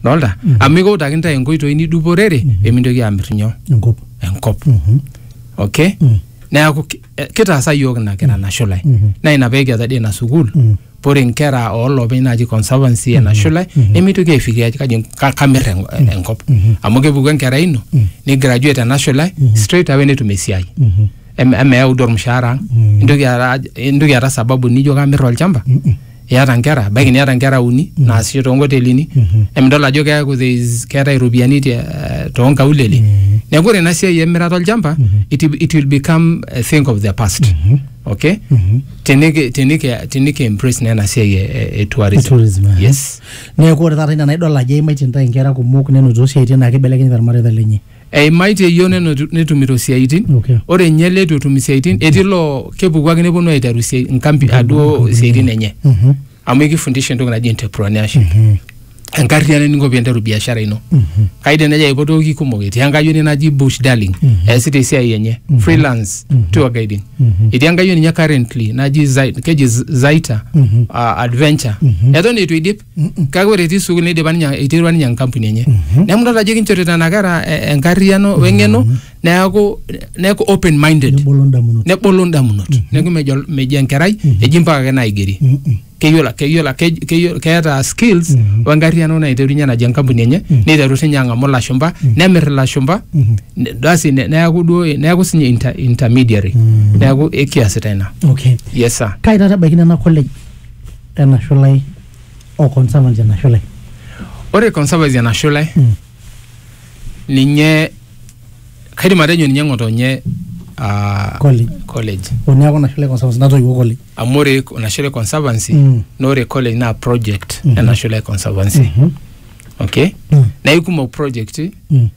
dolta amu ikiutaki ntae inkoitoi niduporere pemintoki amir nyoo enkop enkop okay neaku ki- eh, kitaasa yiok ina kira nashulai naa ina pekiata dii ina sukuul pore nkera oolopeny naaji conservancy e nashulai nemitoki aifikiria ajo kaji ka- kamir en- enkop amu kepuku enkerai ino ni graduate enashulai straight away netum esiai Em- emeyau duo ormushaara ang intoki aata aj- intoki aata sababu nijo kamir olchamba iata nkera baiki niata nkera uni naasisho toonkotelini emidol ajo keeku there is- keetae iropiyiani te- eh, toonkaulele neeku ore ina siai emirata olchamba it, will- it will become a thing of the past okay teniki teniki teniki embrace na ena siai e, e, e tourism, Tourism, aha. yes neeku ore taata ina naidol ajo eimaitie ntae nkera kumok nenotito siaitin naa kibelekenyita irmareita lenye Eimaitie iyiook nenotu- netumito isiaitin Okay. ore ninye ele eitu etum isiaitin etii loo kepuku ake neponu aiteru isiai- inkampi aduo isiaitin enye Mhm. amu ekifundisha entoki naji entrepreneurship Mhm. enkarriano eninko piinteru biashara ino Mhm. kaidim nejo aipotoki kumok etii enkayioni naji bush darling Mhm. eesita esiai enye Mhm. freelance Mhm. tour guiding Mhm. etii enkayioni ninye currently naji Zai- keji Z- zaita Mhm. uh, adventure Mhm. eton eitu eidip kake ore etii sukuul neidipa ninye eiterua ninye enkampuni enye neeku idol ajo kinchorita nena kera eh, enkarriyiano weng'eno neeku neeku open minded nebolo ndamunot nebolo indamunot neeku mejo mejo enkerai eji mpaka ake naigeri Mm, mm. keyiolo keyiolo kej- keyiolo keeta skills Mhm. wenkarriyiano naiterunye naji enkampuni enye neiteru sinye ang'amu ilashumba nemirr ilashumba Mhm. ne- basi ne- neeku duo neeku sinye inter, intermediary neeku ekiasita ina okay yes sir kai taata ebaiki nena college lena shulai o Conservancy ena shulai. Ore Conservancy ena shulai mm. ninye kaidim atejo ninye ng'otonye uh, college. college. Oneaku ina shulai Conservancy natoiwuo college. Amu ore ina shulai Conservancy mm. na ore college naa project mm -hmm. ena shulai Conservancy. Mm -hmm. Okay? Mm. Na ikumok project mm.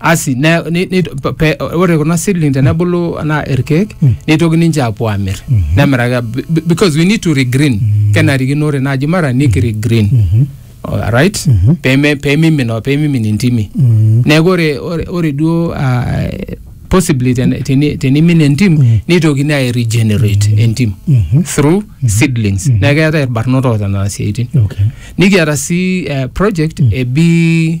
asi ne- ni- ni- pe- pe- ore kuna seedling tenebulu anaa irkeek neitoki ninche apuo amir nemiraki be- be- because we need to regreen kenarikino ore naaji mara nikiregreen right peme pemimin o pemimin intimi neeku ore ore- ore duo ah, possibly ten- teni- tenimin entim neitokini ai regenerate entim through seedlings neeku keetae irbarnot oota nena siaitin Okay. nikiata sii eh, project e bee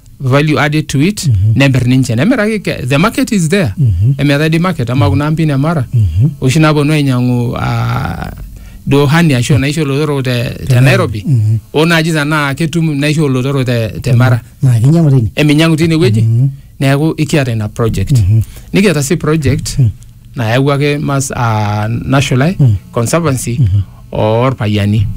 value added to it nemir ninche nemiraki ke- the market is there emeetae di market ama kuna ampin e mara oshi naponu ainyang'u ah, duo hani ashu naisho olotorok te, te nairobi o naaji tanaa ketum naisho olotorok te, te mara naa kinyiang'u tine eminyang'u tine wueji neeku ikiata ina project nikiata sii project nayawua ake mas ah, nashulai conservancy orpayiani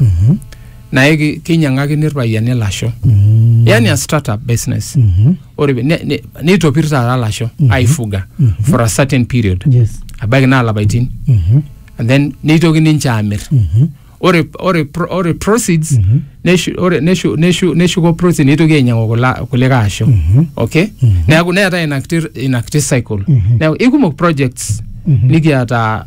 naye ki- kinyiang'akini irpayiani ilasho Mm. yani a startup business Mhm. ore pe- ne- ne- neitopir taata ilasho aifuga for a certain period Yes. abaiki naa lapaitin Mhm. and then neitoki ninche aamir Mhm. ore ore pro- ore proceeds neshu- ore- neshu- neshu- neshuko proceeds neitoki ainyiang'u kula- kulikae asho okay neeku neetae ina kiti- ina kiti cycle neeku ikumok projects nikiata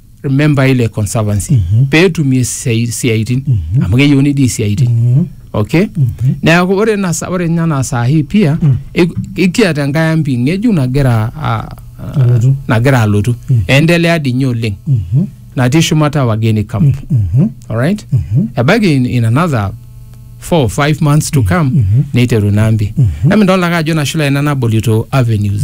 membai ile conservancy Mhm. peetumie isiai- isiaitin Mhm. amu keyieuni dii isiaitin Mhm. okay Mhm. neeku ore ina sa- ore ninye anaa saa hii pia Mm. ik- ikiata enkae ampi ng'ejuk nagira a- a- Alotu. nagira alotu Mm. endelea dii ninye oleng Mhm. natii shumata wageni camp Mhm. alright Mhm. ebaiki in, in another four five months to come Mhm. neiteru ina ampi Mhm. emidolta ake ajo nashula ina nabolito avenues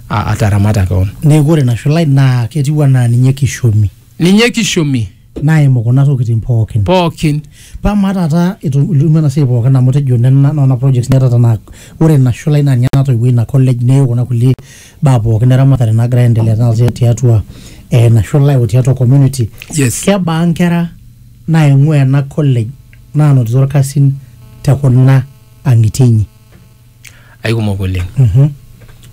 a- ataramata kewon neeku ore nashulai naa ketiu anaa ninye kishomi ninye kishomi naimu kuna tokitin pookin pookin paa maa taata etum- itum ena siai pookin amu tejo nena nona projects niata tanaa ore ina shulai naa ninye natoiwuo ina college neyieu kuna kulie baa pookin eramatare naagira aendelea taata tiatua eh, ina shulai o tiatua community yes kebaa nkera naing'ua ena college naanotito irkasin te kuna ang'itie inyi aikumok oleng Mhm.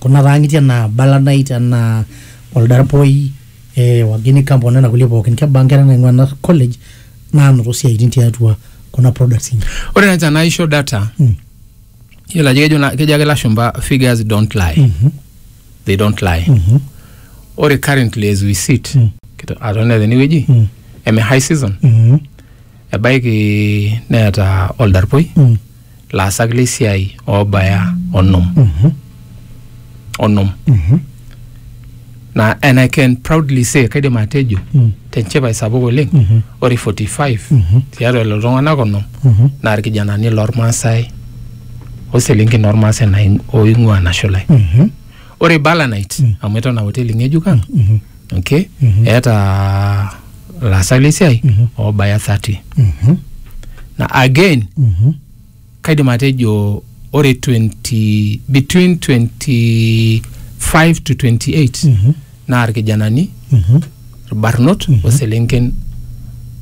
kuna taang'itie anaa balanait anaa oldarpoi eh, wageni camp onena kulie pookin kebaa nkera naing'ua ena college naanoto siaitin tiatua kuna products inyi ore naaji tenaisho data Mm. yiolo ajo kejo na- kejo ake lashumba figures don't lie Mhm. they don't lie Mhm. ore currently as we sit Mm. kito- atonita tenewueji Mm. eme high season Mhm. ebaiki neeta oldarpoi Mm. laasak le siai oobaya onom Mhm. onom Mhm. na and I can proudly say kaidim atejo Mm. tenchipai sapuk oleng Mhm. ore 45 Mhm. tiatua lelo tung'anak onom Mhm. naa irkijanani lormaasai oselenken ormaasai naing- oing'ua nashulai Mhm. ore balanite amu eton aa hoteli ng'ejuk ang Mhm. okay eeta laasak lesiai oobaya 30 Mhm. na again Mhm. kaidim atejo ore 20 between 25 to 28 Mhm. naa irkijanani Mhm. irbarnot oselenken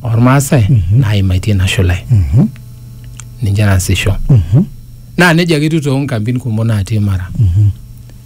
ormaasai naimaitie ina shulai Mhm. ninche naasisho Mhm. naa nejia ake etiu too nkampin kumok natii mara Mhm.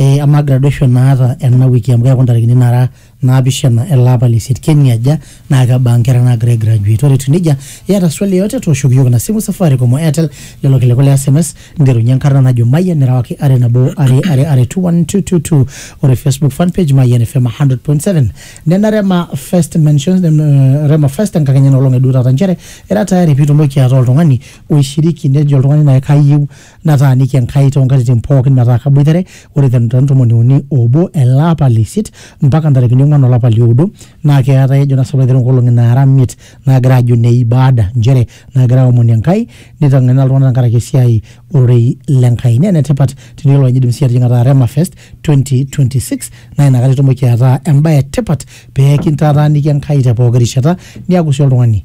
Eh, amaa graduation naata ena wiki amu keeku ntarikini nara naapishana ele apa le isiet keniaja naa kebaa nkera naagira ai graduate ore etiu nejia iyata swali yoyote tooshoki iyiook ina simu safaricom o airtel lelo kiliku le sms nterunye enkarna najo mayian nirewaki are nabo are are are 21222 ore facebook fan page mayian fm 100.7 nena rema first mentions nem- eh, rema first enkakenya ina olong eduo taata nchere era tayari piitumoki ataa oltung'ani oishiriki nejo oltung'ani naai kayieu nataaniki Enkai too nkatitin pooki metaa kaboitare ore te ntomoni uni oobo ele apa le isiet mpaka ntarikini ong'uan olapa li oudo naa keetae ejo nasipa aiteru nkolong'i naara imiet naagira aajo ne ibaada nchere naagira aomoni Enkai neiteng'ena iltung'ana tenkaraki esiai ororei le Nkai. Naa enetipat teniyiolou ajo indim sii atijing'a taata Rema Fest 2026 naa inakata itumoki ataa embae e tipat pee kintataaniki Enkai te pooki rishata niaku sii oltung'ani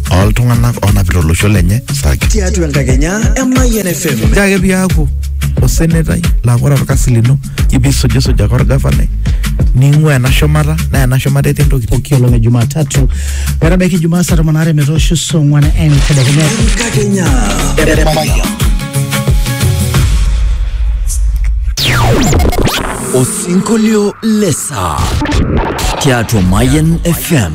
ooltung'anak oonapita olosho lenye saki. tiatua enkakenya emayian fm Ore ake piaku osenetai laa ore orkasi lino ipisujisuj ake orgavanai ning'ua ena shumata naa ena shumata etii entoki pooki olong e jumatatu metabaiki jumaa saa tomon aare metoosho saa ong'uan entedekenya enkakenya osinkolio lesaa tiatua mayan fm